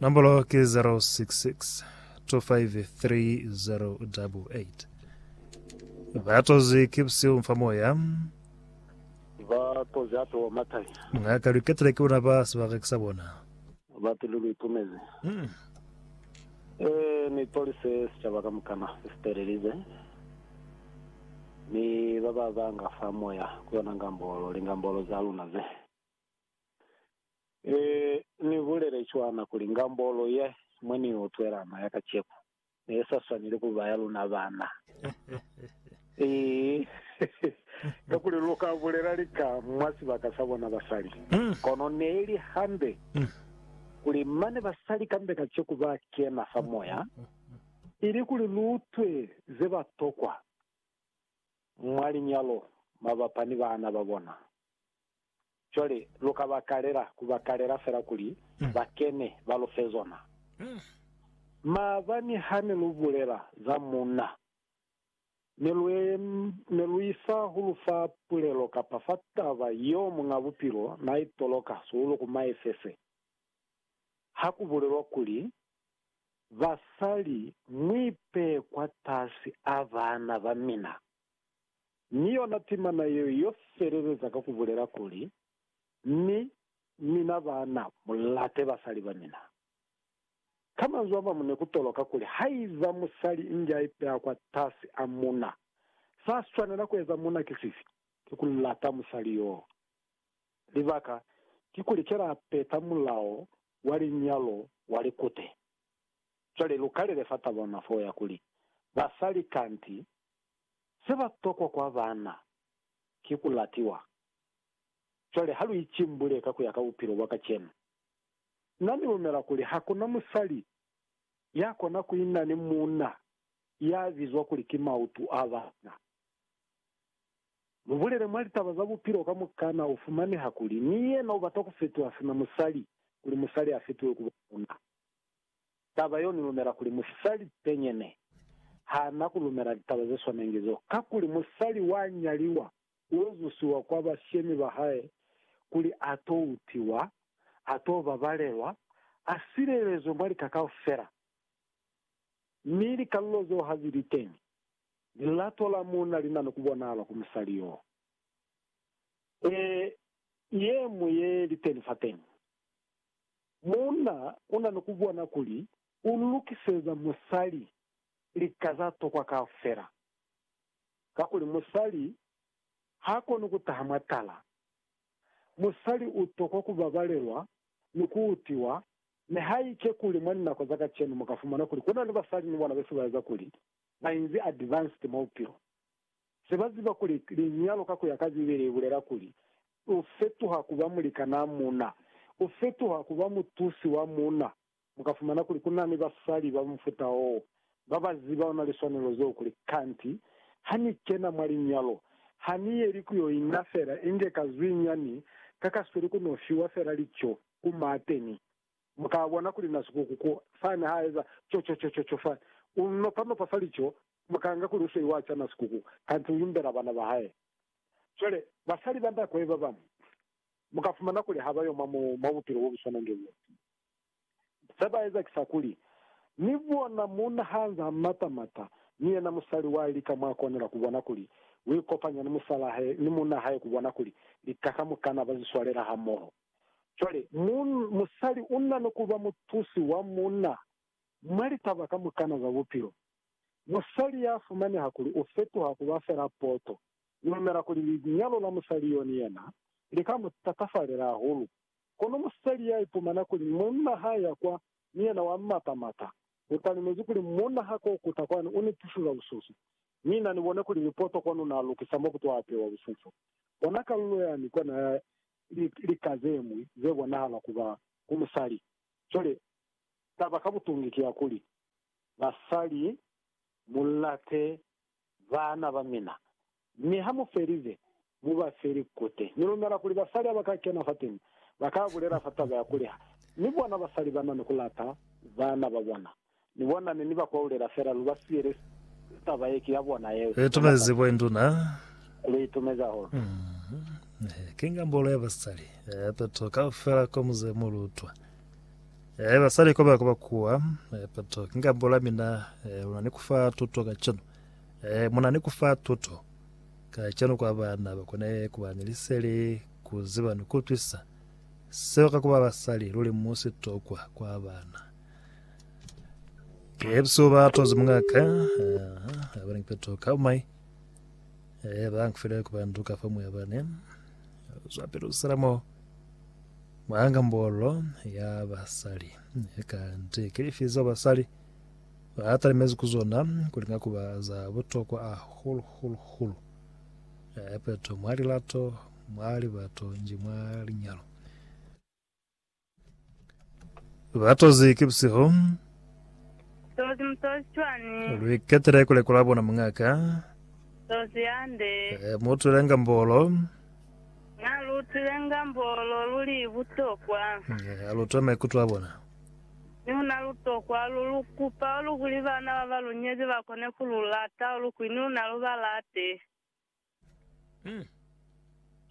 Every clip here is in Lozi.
Nombolo ki 066 253 Ba tozi ki busihu mfa moya. Ba tozi hape wa matanya. Ngaka lu ketile ki bona ba sibaka ki sa bona. Ba pilu lu itumezi. E ni tolise sicaba kamukana se sitelelize, ni ba ba banga fa moya ku yona ngambolo, lingambolo za luna ze. E, Ni bulele cwana kuli ngambolo ye mwe Ni yo twelana ya kacenu ne sa swaneli ku ba ya luna bana. E, kakuli lu ka bulela lika mwa sibaka sa bona basali. Kono neeli hande kuli mane basali kambe kaceku ba kena fa moya, ili kuli lu utwe ze ba tokwa mwa linyalo mabapa ni bana ba bona. Cwale lu ka ba kalela, ku ba kalela fela kuli ba kene, ba lu fe zona. Maabani hane lu bulela za Munna, ne lu, ne lu isa ku lu fa pulelo kapa fa taba yeo Muñ'a Bupilo n'a i toloka sihulu ku Maefese, ha ku bulelwa kuli, Basali, mu ipehe kwatasi a baana ba mina. Mi yona timana yeo yo feleleza ka ku bulela kuli, Mi mina baana, mu late basali ba mina. Ka manzwi a mañwi ne ku toloka kuli haiba musali inge a ipeha kwatasi a muna, sa swanela ku eza muna ki sifi? Ki ku lata musali yoo. Libaka kikuli ki la peta mulao wa linyalo wa likute. Cwale lu kalele fa taba yona foo ya kuli, Basali kanti Seba tokwa kwa baana ki ku latiwa. Cwale ha lu icimbule ka ku ya ka bupilo bwa kacenu. Na ni lumela kuli ha ku na musali ya kona ku ina ni muuna ya bizwa kuli ki mautu a baana. Mu bulele mwa litaba za bupilo kamukana u fumaneha kuli ni yena u bata ku fetoha sina musali kuli musali a fetohe ku ba muuna. Taba yo ni lumela kuli musali penyene ha na ku lumela litaba ze swanengi zo, kakuli musali wa nyaliwa u ezusiwa kwa bashemi ba hae kuli a to utiwa, a to babalelwa, a silelezwe mwa lika kaufela. Mi likalulo zeo ha zi li teñi, lilato la muuna li na ni ku bonahala ku musali yo. Ee, ye mu ye li teni fateñi. Muuna una ni kubona kuli u lukiseza musali lika za tokwa kaufela, kakuli musali ha koni kutaha mwa tala. Musali u tokwa kubabalelwa ni kuutiwa, nihaike kuli mwa linako za kacenu muka fumana kuli kuna ni basali ni bona bese baeza kuli bainzi advanced mwa bupilo. Se ba ziba kuli linyalo ka ku ya ka Bibele li bulela kuli, u fetuha ku ba mulikanaa muuna, u fetuha ku ba mutusi wa muuna. Mu ka fumana kuli ku na ni basali ba mufuta woo ba ba ziba ona liswanelo zeo kuli, Kanti ha ni kena mwa linyalo, ha ni yeli ku yo ina fela inge ka zwiinyani ka ka sweli ku no fiwa fela lico ku maateni. Mu ka bona kuli na sikuku ku fani ha eza co-co-co-co-co fani. U nopa-nopa fa lico, mu ka nga kuli u sweiwa ca na sikuku, kanti u imbela bana ba hae. Cwale, basali ba nda koe ba bañwi, mu ka fumana kuli ha ba yo mwa, mwa bupilo bo bu swanange b'o. Se ba eza ki sa kuli, Ni bona muuna ha nz'a mata-mata, mi yena musali wa lika mwa konela ku bona kuli u ikopanya ni musal'a hae, ni muuna hae ku bona kuli lika kamukana ba zi swalela hamoho. Cwale, mu, musali una ni kuba mutusi wa munna mwa litaba kamukana za bupilo. Musali ya fumaneha kuli u fetuha kuba fela poto. Ni lumela kuli linyalo la musali yo ni yena li ka mu tatafalela hahulu. Kono musali ya ipumana kuli munna ha ya kwa ni yena wa mmatamata, u talimezi kuli, Munna ha ko kuta kwani, u ni tusiza bususu. Mi na ni bone kuli ni poto kwani una lukisa mo kuto apewa bususu. Bona kalulo yani kona ya Ki lika ze ñwi ze bonahala ku ba ku musali. Cwale, taba ka butungi ki ya kuli, basali, mu late baana ba mina, mi ha mu felize, mu ba fe likute. Ni lumela kuli basali ha ba ka kena fateni, ba ka bulela fa taba ya kuli ha ni bona basali ba na ni ku lata baana ba bona. Ni bona ne ni ba kwaulela fela lu ba siyele taba ye ki ya bona yeo. Lu itumezi bo induna. Lu itumezi hahulu. Ehe, ki nga mbolo ya basali. Eh, peto kaufela ko muze mu lu utwa. Eh, basali ko ba kuba kuwa. Eh, peto ki nga mbolo ya mina. Eh, luna ni kufa tuto ka cenu. Eh, muna ni kufa tuto ka cenu kwa bana ba kone kuba ni liseli, ku ziba ni ku utwisa seo ka kuba basali. Luli mu sitokwa kwa bana. Ebso ba tozi mungaka eh, abana kipeto kaumai eh, ba kufile kubantu ka famu ya bane zwapele usalamo mwanga mbolo ya basali kanti kilifizo basali batalimezi kuzona kulinga kuba za butokwa a hulu hulu hulu eh, peto mwalilato mwalibato nji mwalinyalo Batozi ki busihu. Tozi mutozi cwani? Lwiketele kulekola bona muñaka. Tozi yande. Eh, muutwile ngambolo. Na luutwile ngambolo luli butokwa. Eh, alutwe maikuto a bona. Mi una lutokwa lu lukupa ulu kuli bana baba lunyezi bakone kululata ulu kwi ni una lubalate.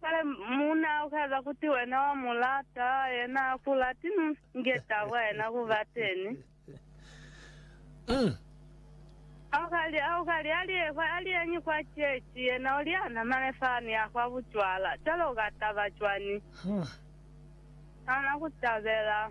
Cwale muuna ukaeza kuti wena wa mu lata, yena ha ku lati, mi nge tabo ya yena ku ba teni. Ha u ka li, ha u ka li, Ali ye kwa, ali yeñi kwa chechi, yena u li, Ha na mane fani ya kwa bucwala. Cwale u ka taba cwani? Ha na ku tabela.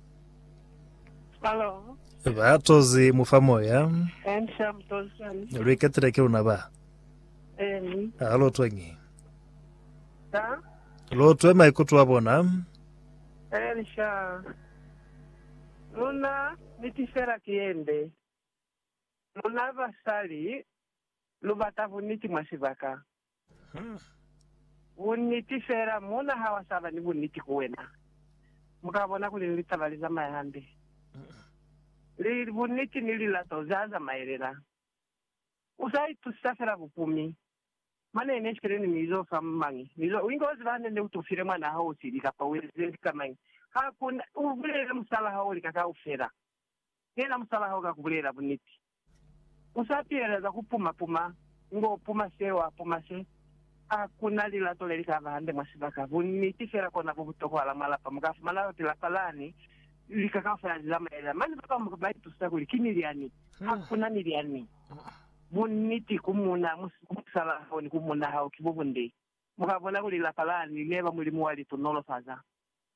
Ba tozi mu fa moya. Lu iketile ki luna ba. Ha lu twengi. Lu twe maikuto a bona. Luna niti fela ki yende. Luna basali lu bata buniti mwa sibaka. Bunniti fela, muuna ha wa sa ba ni bunniti ku wena, mu ka bona kuli ni litaba li zamaya hande. Li, bunniti ni lilato za zamaelela. U sa itusisa fela bupumi, mane ne file ni mi zo fa mañi, mi zo, inge u ziba hande ne u tufile mwanaa hao sili kapa u ezile lika mañi, ha ku na, u bulele musalaa hao lika kaufela. Kena musalaho ka kubulela buniti. Usa pilela za kupuma puma, ngo puma se wa puma se. Ha kuna lilato leli kaba hande mwa sibaka. Buniti fela kona bo butokohala mwa lapa. Muka fumana lati lapa lani lika kaufela li zamaela. Mane babamu ba itusa kuli ki milyani. Ha kuna milyani. Buniti ku muuna, ku musalaho ni ku muuna hao ki bo bunde. Muka bona kuli lapa lani neba Mulimu wa li tunolofaza.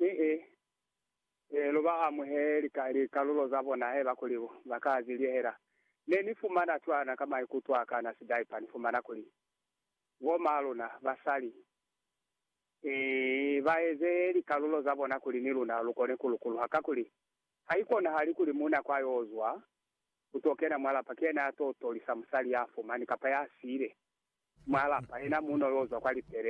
Ee, ee, lu ba amuheli ka likalulo za bona haiba kuli ba ka zi lihela. Ne ni fumana cwana ka maikuto a ka na sidaipa, ni fumana kuli bo ma luna basali ba eze likalulo za bona kuli ni luna lu kone ku lukuluha. Kakuli, ha i konahali kuli muuna kwa yo zwa ku to kena mwa lapa ki yena ya to tolisa musali ya fumani kapa ya siile mwa lapa, yena muuna yo zwa kwa lipele.